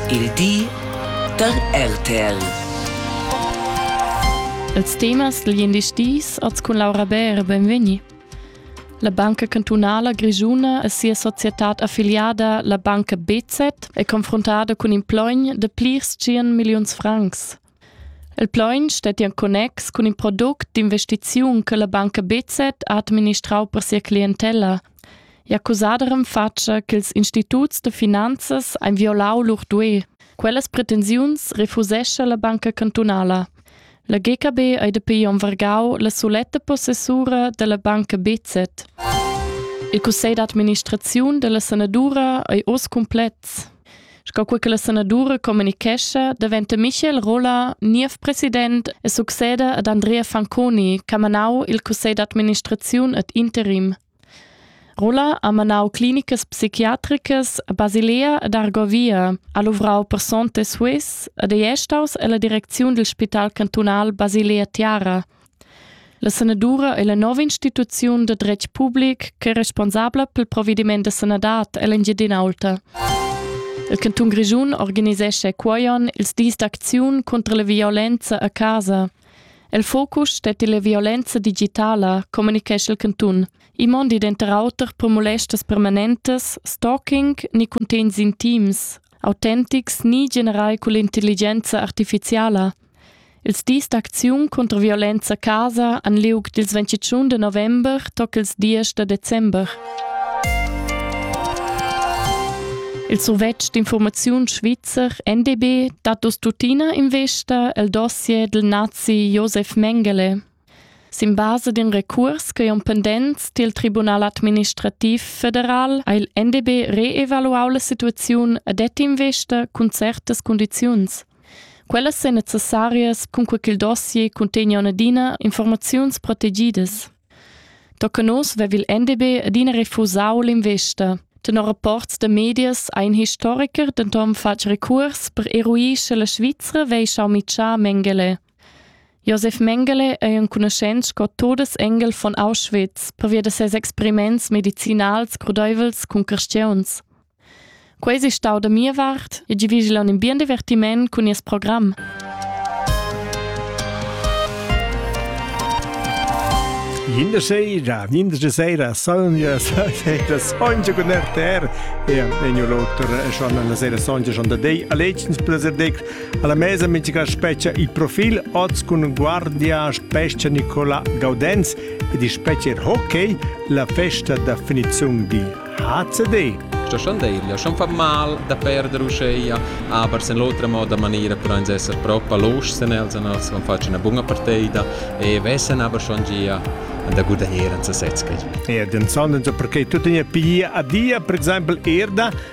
Il di da RTL. Els temas dal gliendis dis als cun Laura Bär benvegni. La Banca Cantunala Grischuna e sia societad affiliada, la Banca BZ, è confrontata cun in plogn da plirs 100 milliuns francs. Il plaun stettia en connex cun in product d'investiziun che la banca BZ ha administrau per sia clientella. Ei ha cusada renfatscha ch'ils instituts da finanzas ein violau lur duei. Quellas pretensiuns refusescha la banca cantunala. La GKB ei dapi onn vargau la suletta possessura dalla banca BZ. Il cussegl d'administraziun dalla sanadura ei oz cumplex. Sco quei che la sanadura communichescha, daventa Michel Rolla niev president e succeda ad Andrea Fanconi, ch'ha manau il cussegl d'administraziun ad interim. Rolla ha manau clinicas psichiatricas a Basilea ed Argovia, ha luvrau personte Swiss ed ei staus ella direcziun dil spital cantunal Basilea Tiara. La sanadura è la nova instituziun da dretg public ch'è responsabla pel provediment da sanadad ell'Engiadin'Aulta. Il cantun Grischun organisescha cuoion ils dis d'acziun contro la violenza a casa. Il focus stetti la violenza digitala, communichescha il cantun. I mondi denter auter per molestas permanentes, stalking ni cuntegns intims, autentics ni generai cull'intelligenza artificiala. Ils dis d'acziun cunter violenza a casa han liug dils ventitschun de november toc ils diesch da december. Il survetsch d'informaziun svizzer NDB dat dus tuttina investa el dossier del nazi Josef Mengele. Sin basa d'in recuors ch'ei on pendents dil Tribunal administrativ federal ha il NDB reevaluau la situaziun e det investa cun certas condiziuns. Quellas ein necessarias cun quei ch'il dossier cuntegna adina informaziuns protegidas. Tocca nos vev il NDB adina refusau l'investa. Tenor rapports da medias ha in historiker denton fatg recuors per eruir sche la Svizra vei schau mitschar Mengele. Josef Mengele ei enconuschent sco Todesengel von Auschwitz pervia da ses experiments medicinals crudeivels cun carstiuns. Quei ei stau da mia vart e gi vigil un bien divertiment cun nies program. Jinde seira, jinde de seira, sonja, seira, sonja con RTR e en l'auter schon la seira sonja schon da dei. A letztens placer dei Alla mesa mitica specia il profil oz cun guardia spescha Nicola Gaudenz ed il specer hockey la festa da finizion di HCD. Sto schon dir, ja schon fa mal da perdere uscheia, aber sen l'otra moda maniera per uns esser proprio los sen els an els van faccia una bunga partida e vessen aber schon gia an der guda eran zu setz geht. Ja, den Sonnenso perché tu tenia piglia a dia, per exempel erda,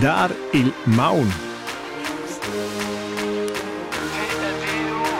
Dar il maun.